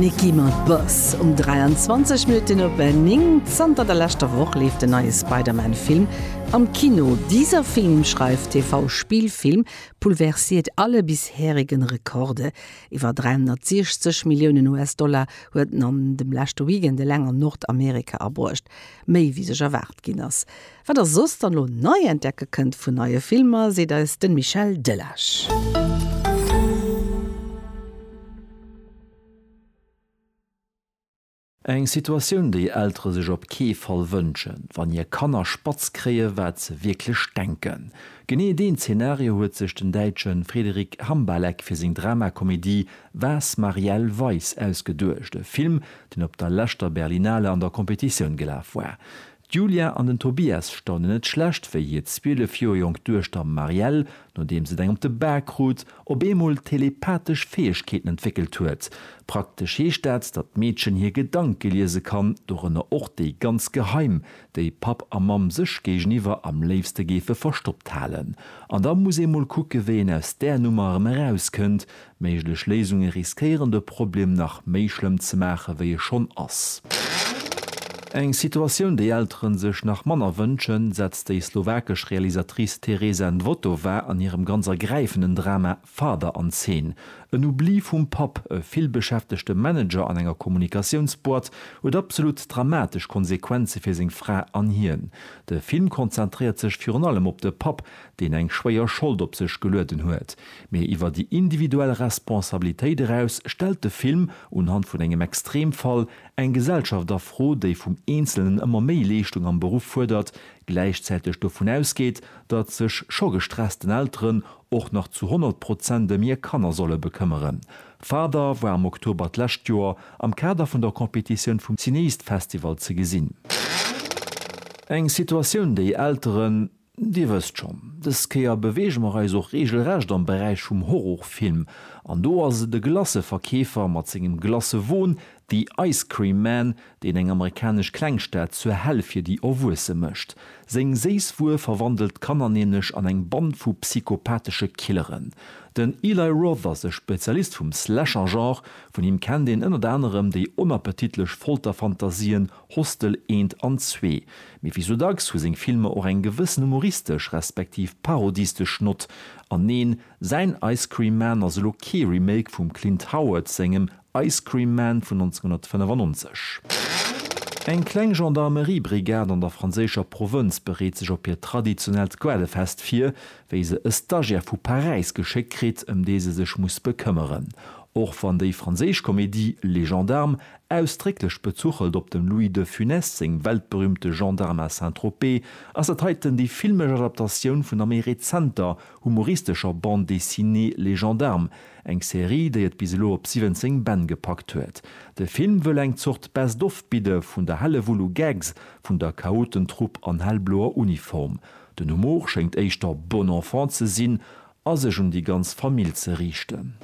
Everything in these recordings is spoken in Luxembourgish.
Nicki mat Boss um 23 Minutten op 9. Zanter der leschter Woch leeft den neie Spider-Man-Film am Kino. Dieser Film, schreift TV-Spielfilm, pulversiert alle bisherigen Rekorde. Iwwer 360 Milliounen US-Dollar huet en an dem leschte Weekend eleng an Nordamerika abruecht, méi wéi sech erwaart ginn ass. Wat der soss dann elo nei entdecke kënnt vun neie Filmer, seet eis den Michel Delage. Eng Situatioun déi Eltere sech op kee Fall wënschen, wann hir Kanner spatz kréie wat se wierklech denken. Genee deen Zenario huet sech den Däitsche Frederic Hambalek fir seng Dramakomedie Was Marielle Weiss ausgeduecht, e Film deen op der leschter Berlinale an der Competitioun gelaf war. D'Julia an den Tobias staunen net schlecht, wéi hir 12 Joer jonk Duechter Marielle, nodeems et eng op de Bak krut, op eemol telepathesch Fäegkeeten entwéckelt huet. Praktesch heescht dat, datt d'Meedchen hir Gedanke liese kann, dorënner och déi ganz geheim, déi Papp a Mamm sech géigeniwwer am léifste géife verstoppt halen. An da muss ee mol kucke wéi een aus där Nummer erëm erauskënnt, Méiglech Léisunge riskéieren de Problem nach méi schlëmm ze maache wéi e schonn ass. Eng Situatioun, déi Eltere sech nach manner wënschen, setzt déi slowakesch Realisatrice Tereza Nvotová an hirem ganz ergräifenden Drama Father an Zeen. En Oubli vum Papp, e villbeschäftegte Manager an enger Kommunikatiounsboîte, huet absolut dramatesch Konsequenze fir seng Fra an hien. De Film konzentréiert sech virun allem op de Papp, deen eng schwéier Schold op sech gelueden huet, mee iwwer déi individuell Responsabilitéit eraus stellt de Film, unhand vun engem Extremfall, eng Gesellschaft a Fro, déi vum Eenzelnen ëmmer méi Leeschtung am Beruff fuerdert, gläichzäiteg dovun ausgeet, datt sech scho gestressten Elteren och nach zu 100 Prozent ëm hir Kanner solle bekëmmeren. Father war am Oktober d'lescht Joer am Kader vun der Competitioun vum Cineast Festival ze gesinn. Eng Situatioun, déi Elteren, Dir wësst schonn, dës Kéier beweege mer eis och reegelrecht am Beräich vum Horrorfilm, an do ass et e Glacëverkeefer mat sengem Glacëwon, The Ice Cream Man, deen eng amerikanesch Klengstad zur Hell fir déi Erwuesse mécht. Seng séiss Wuer verwandelt d'Kanner nämlech an eng Band vu psychopathesche Killeren. Den Eli Roth ass e Spezialist vum Slasher-Genre, vun him kennt een ënnert anerem déi onappetitlech Folterfantasien Hostel eent an zwee, mee wéi sou dacks hu seng Filmer och eng gewëssen humoristesch respektiv parodistesch Nott. An neen, säin Ice Cream Man ass elo kee Remake vum Clint Howard sengem Ice Cream Man vun 1995. Eng kleng Gendarmerie-Brigade an der franséischer Provënz bereet sech op hiert traditionellt Goelefest vir, wéi se e Stagiaire vu Paräis geschéckt kritt, ëm dee se sech muss bekëmmeren. Och wann déi franséisch Komedie Les Gendarmes Ausdrécklech bezuchelt op dem Louis de Funès seng weltberüümte Gendarme à Saint-Tropez, ass dat heiten déi filmesch Adaptatioun vun der méi rezenter, humoristescher Bande dessinée Les Gendarmes, eng Serie, déi et bis elo op 17 Bänn gepackt huet. De Film wëll eng Zort Best of bidde vun der Hellewull u Gags vun der Chaotentrupp an hellbloer Uniform. Den Humor schéngt éischter bon enfant ze sinn, a sech un déi ganz Famill ze riichten.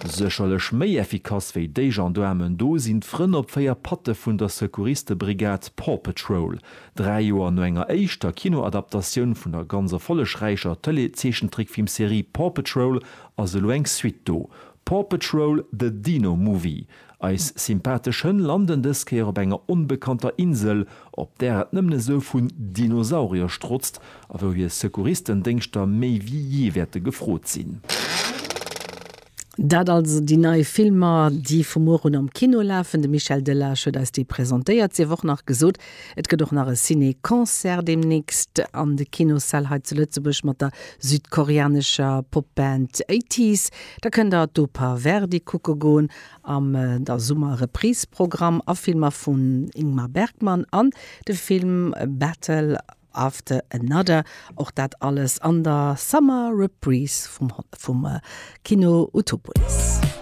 Sécherlech méi effikass wéi déi Gendaarmen do sinn d'Frënn op 4 Patte vun der Secouristebrigade Paw Patrol. Dräi Joer no enger éischter Kinoadaptatioun vun der ganz erfollegräicher Tëleezeechentrickfilmserie Paw Patrol ass elo eng Suite do, Paw Patrol, The Dino Movie. Eis sympathesch Hënn landen dës Kéier op enger onbekannter Insel, op där et nëmmen esou vun Dinosaurier strotzt a wou hir Secouristendéngschter méi wéi jee wäerte gefrot sinn. Dat also déi nei Filmer, déi vu muer un am Kino lafen. De Michel Delage huet eis déi presentéiert. Sief och nach gesot, Et gëtt och nach e Ciné-Concert deemnächst an de Kinossäll hei zu Lëtzebuerg mat der südkoreanescher Popband ATEEZ. Da kënnt der d'Oper Verdi kucke goen am der Summer-Reprise-Programm a Filmer vum Ingmar Bergman an de Film Battle After Another. Och dat alles an der Summer-Reprise vum Kino Utopolis.